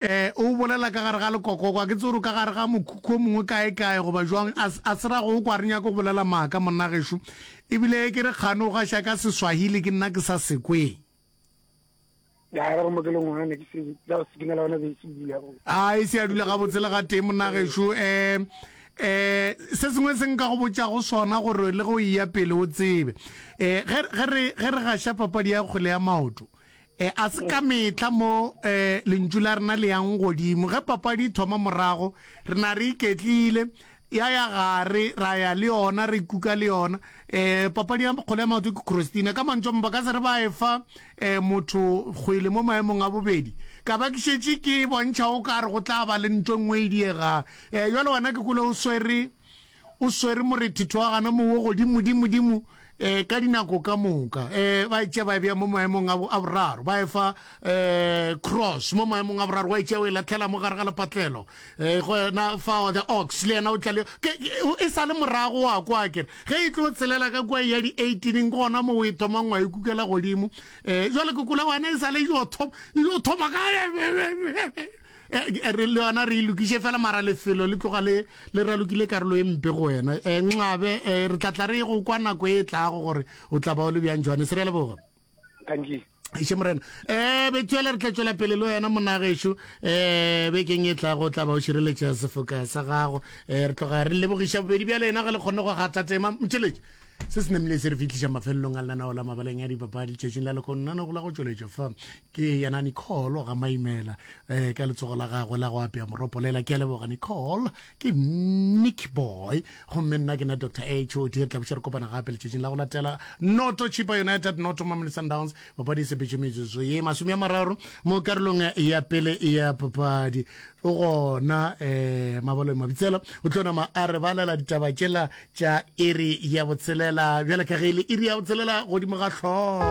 O bolela ka gare ga lekokoko, a ke tsebe gore o ka gare ga mokhukhu o mongwe kaekae goba jwang. A, a se ra go kwa, a re nyake go bolela maaka, monna gešo. E bile ke re kgane o gaša ka Seswahili, ke nna ke sa se kwe. Ya, re go mo ke le ngwana, ne ke se, ya go sikinela gona be e se bula. A, e se a dula gabotse le ga tee, monna gešo. Um, um, se sengwe se nka go botšago sona gore le ge o eya pele o tsebe. Um, ge, ge re, ge re gaša papadi ya kgwele ya maoto, E, a se ka mehla mo e, lentšu la rena le yang godimo. Ge papadi e thoma morago, re na re iketlile, ya ya gare, ra ya le yona, re kuka le yona. E, papadi ya kgole ya maoto ke Crostina. Ka mantšu a mang, ba ka se re ba e fa e, motho kgwele mo maemong a bobedi. Ka ba ke šetše ke bontšha o ka re go tla ba le ntwa e nngwe e diegang. E, bjale wena ke kwele o swere. O swere morethethwagana mo wo godimodimodimo ka dinako ka moka. Ba e tšea ba e bea mo maemong a boraro, ba e fa cross mo maemong a boraro, wa e tšea o e latlhela mo gare ga lepatlelo. Gona fao the ox le yena o tla le e sa le morago wa kwa kere ge e tlo tselela ka kwa ya di-eighteeneng ke gona mo o e thomang wa e kukela godimo. Jwale ke kula wena e sa le e yo thoma gae. eh, re le yona re ilokiše e fela mara lefelo le tloga le le ralokile karolo e mpe go wena um eh, nxabe um re tlatla re go kwa nako e tlago gore o tla ba o le bjang jwane se re leboga thank you iše morena um betswele re tla tswela pele le wena monagešo um eh, bekeng e tlago tla ba o šireletša sefoka sa gago um re tloga re lebogiša bobedi bja lena ge le kgonne go gatatema motšheletše se se namile se re fitlhiša mafelelong a lenanao la mabaleng ya dipapadi tšatšing la lekonnana go la go tšweletša fa ke yena nicole ga maimela um ka letsogo la gagwe la go apea moropolela ke a leboga nicole ke nick boy gomme nna ke na dr a h o di re tlaboša re kopana gape letšatšing la go latela noto chipa united noto mamele sundowns papadi e sepetše metsotso ye masome ya mararo mo karolong ya pele ya papadi o gona um mabalong mabitsela o tlo nama a re balela ditaba tšela tša iri ya botshelela bjale ka ge e le iri ya botshelela godimo ga tlhogo